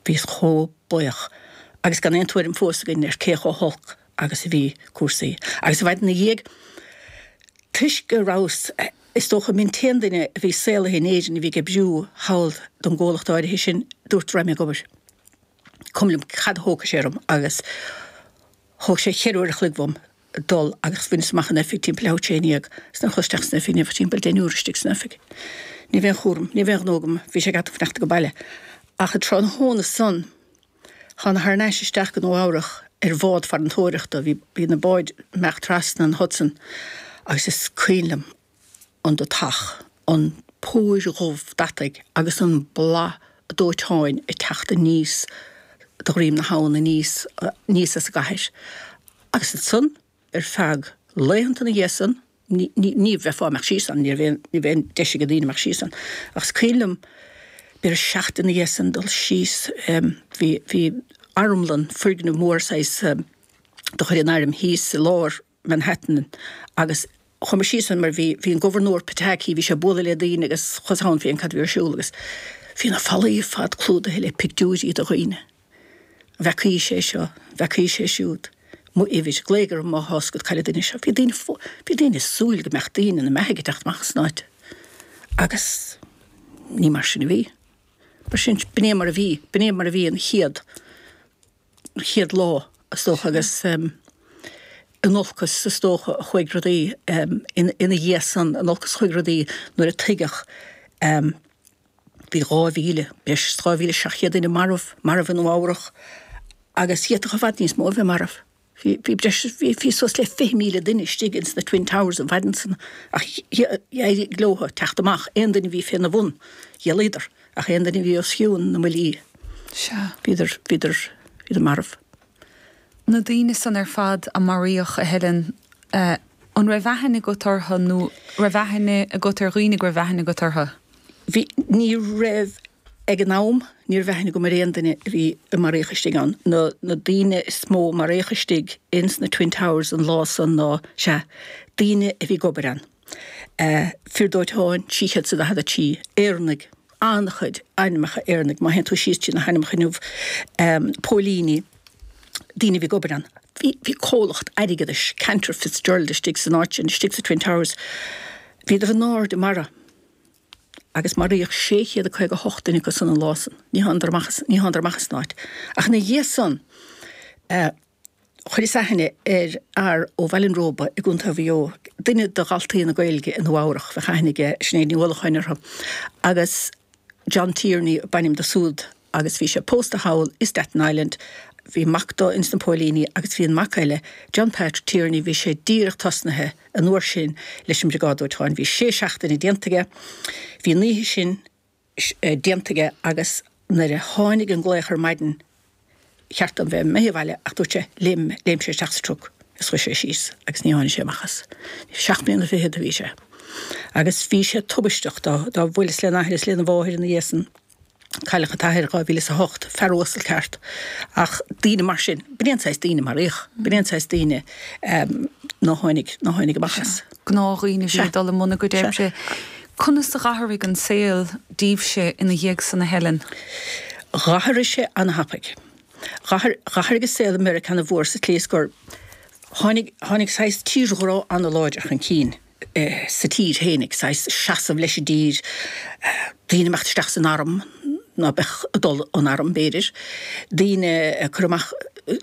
Bhíos chomh buíoch agus gan aon tuairim fós againn ar cé chomh holc agus a bhí cúrsaí. Agus i bhfad ina dhiaidh, toisc go rabhas, is dócha, an t-aon duine a bhí saolaithe in Éirinn a bhí ag oibriú thall don gcomhlacht áirithe sin, dúirt go raibh mé ag obair. Cuimhin liom cad a thógfadh sé orm agus. Thóg sé ceithre uair a chloig dhom dul agus bhaineas amach an oifig timpeall 11:30 's nuair a chuas isteach san oifig, ní raibh ach timpeall deichniúr istigh san oifig. Ní raibh aon chúram, ní raibh aon ghnó agam, bhí sé ag at an chneachta go baile. Ach an tráthnóna san, thána thar n-ais isteach go Nua Eabhrach ar bhád farantóireachta, bhí na báid ag imeacht trasna an Hudson agus is cuimhin liom, an deatach, an phúir dhubh deataigh agus an boladh dóiteáin ag teacht aníos de dhroim na habhann aníos aníos as an gcathair. Agus ansan ar feadh laethanta ina dhiaidh san, ní ní fhéadfá imeacht síos ann, ní raibh aon ní raibh aon deis ag daoine imeacht síos ann. Ach is cuimhin liom b'fhéidir seachtain ina dhiaidh san dul síos bhí bhí armlann, foirgneamh mór saghas de chuid an airm thíos i lár, Manhattan agus chuamar síos ann mar bhí bhí an Gobharnóir Pataki, bhí sé ag bualadh le daoine agus chuas ann féachaint cad a bhí ar siúl agus bhí na fallaí ar fad clúdaithe le pictiúirí de dhaoine. An bhfeacaís é seo, an bhfeacaís é siúd. Mo uimhir, glaoigh orm má tá a fhios agat cá bhfuil an duine seo. Bhí daoine bhí daoine ag súil go mbeadh daoine ina mbeathaidh ag teacht amach as an áit agus ní mar sin a bhí. Mar sin, b'in é mar a bhí, b'in é mar a bhí an chéad. chéad lá, is dócha, agus in olcas, is dócha, a chuaigh rudaí ina dhiaidh san, in olcas a chuaigh rudaí nuair a tuigeadh bhí 2,000, breis is 2,700 duine marbh, marbh i Nua Eabhrach agus d'fhéadfadh i bhfad níos mó a bheith marbh. Bhí, bhí breis is, bhí, bhí suas le 20,000 duine istigh ins na Twin Towers an mhaidin san ach dh'éirigh leotha teacht amach, aon duine a bhí féna bhun, dh'éalaíodar. Ach aon duine a bhí os cionn na mbuillí, Sea. bhíodar, bhíodar, bhíodar marbh. Na daoine san ar fad a maraíodh, a Helen, eh, an raibh aithne agat orthu nó raibh aithne agat ar dhaoine go raibh aithne agat orthu? Bhí, ní raibh, ag an am, ní raibh aithne agam ar aon duine a bhí, a maraíodh istigh ann. Na, na daoine is mó a maraíodh istigh ins na Twin Towers an lá san ná, sea, daoine a bhí ag obair ann. eh, fir dóiteáin, 343 Éireannaigh, an-chuid ainmneacha Éireannaigh má théann tú síos trí na hainmneacha inniu, póilíní, daoine a bhí ag obair ann, bhí bhí comhlacht airgeadais, Cantor Fitzgerald, istigh san áit sin, istigh sa Twin Towers. Bhíodar in airde i mbarra agus maraíodh 658 duine acu san an lá san. Ní thánadar amach as ní thánadar amach as an áit. Ach ina dhiaidh san, eh, Chuireas-sa aithne ar fhear ó Bhaile an Róba i gContae Mhaigh Eo, duine de dhaltaí na Gaeilge i Nua Eabhrach, bheadh aithne ag Sinéad Ní Uallacháin orthu, agus John Tierney ab ainm do súd agus bhí sé pósta thall i Staten Island. Bhí mac do ins na póilíní agus bhí an mac eile, John Patrick Tierney, bhí sé díreach tosnaithe an uair sin leis an Briogáid Dóiteáin. Bhí sé seachtaine déanta aige. Bhí an oíche sin déanta aige agus nuair a tháinig an glaoch ar maidin cheart dó bheith imithe abhaile ach dúirt sé, léim sé isteach sa truck is chuaigh sé síos agus níor tháinig sé amach as. Seacht mbliana fichead a bhí sé agus bhí sé tubaisteach dá, bhuel, is lena athair is lena mháthair ina dhiaidh san. Cailleadh an t-athair i dhá mhíle is a hocht, fear uasal ceart ach daoine mar sin, b'in an saghas daoine a maraíodh, b'in an saghas daoine ná tháinig, ná tháinig amach as. gnáthdhaoine a bhí ag dul i mbun a gcuid oibre. Conas a dh'athraigh an saol díbhse ina dhiaidh san, a Helen? Dh'athraigh sé ana-thapaidh. Dh'athraigh an saol i Meiriceá ana-mhór sa tslí is gur tháinig saghas tírghrá ana-láidir chun cinn sa tír féin, ag saghas seasamh leis an dtír, daoine ag imeacht isteach san arm, ná beadh ag dul 'on arm, b'fhéidir, daoine ag cur amach,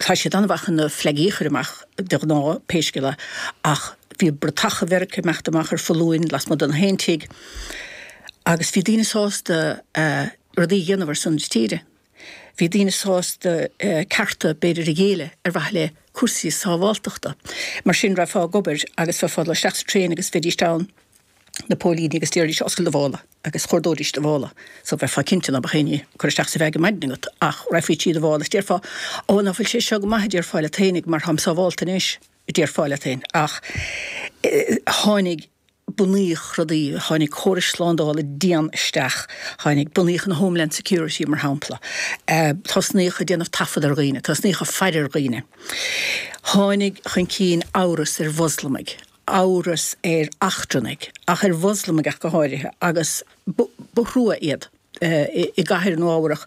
tá siad ana-mhaith chun na flegaí a chur amach, de ghnáth, pé scéal é, ach bhí bratacha Mheiriceá ag imeacht amach ar foluain lasmuigh de gach aon tigh, agus bhí daoine sásta rudaí a dhéanamh ar son na tíre. Bhí daoine sásta cearta, b'fhéidir, a ghéilleadh ar mhaithe le cúrsaí sábháltachta. Mar sin, raghfá ag obair agus bheifeá ag dul isteach sa traein agus bheidís ann na póilíní agus d'osclóidís, oscailt do mhála agus chuardóidís do mhála so bheifeá cinnte ná beadh éinne ag cur isteach sa bhag ar maidin agat ach raghfaí trí do mhála is déarfá Ó ná fuil sé seo go maith a déarfá leat fhéin mar táim sábhálta anois a déarfá leat fhéin ach tháinig bunaíodh rudaí tháinig córais slándála dian isteach tháinig bunaíodh an Homeland Security mar shampla tosnaíodh ag déanamh taifead ar dhaoine tosnaíodh ag faire ar dhaoine tháinig chun cinn amhras ar Mhoslamaigh amhras ar eachtrannaigh, ach ar Mhoslamaigh go háirithe, agus ba thrua iad i gcathair Nua Eabhrac.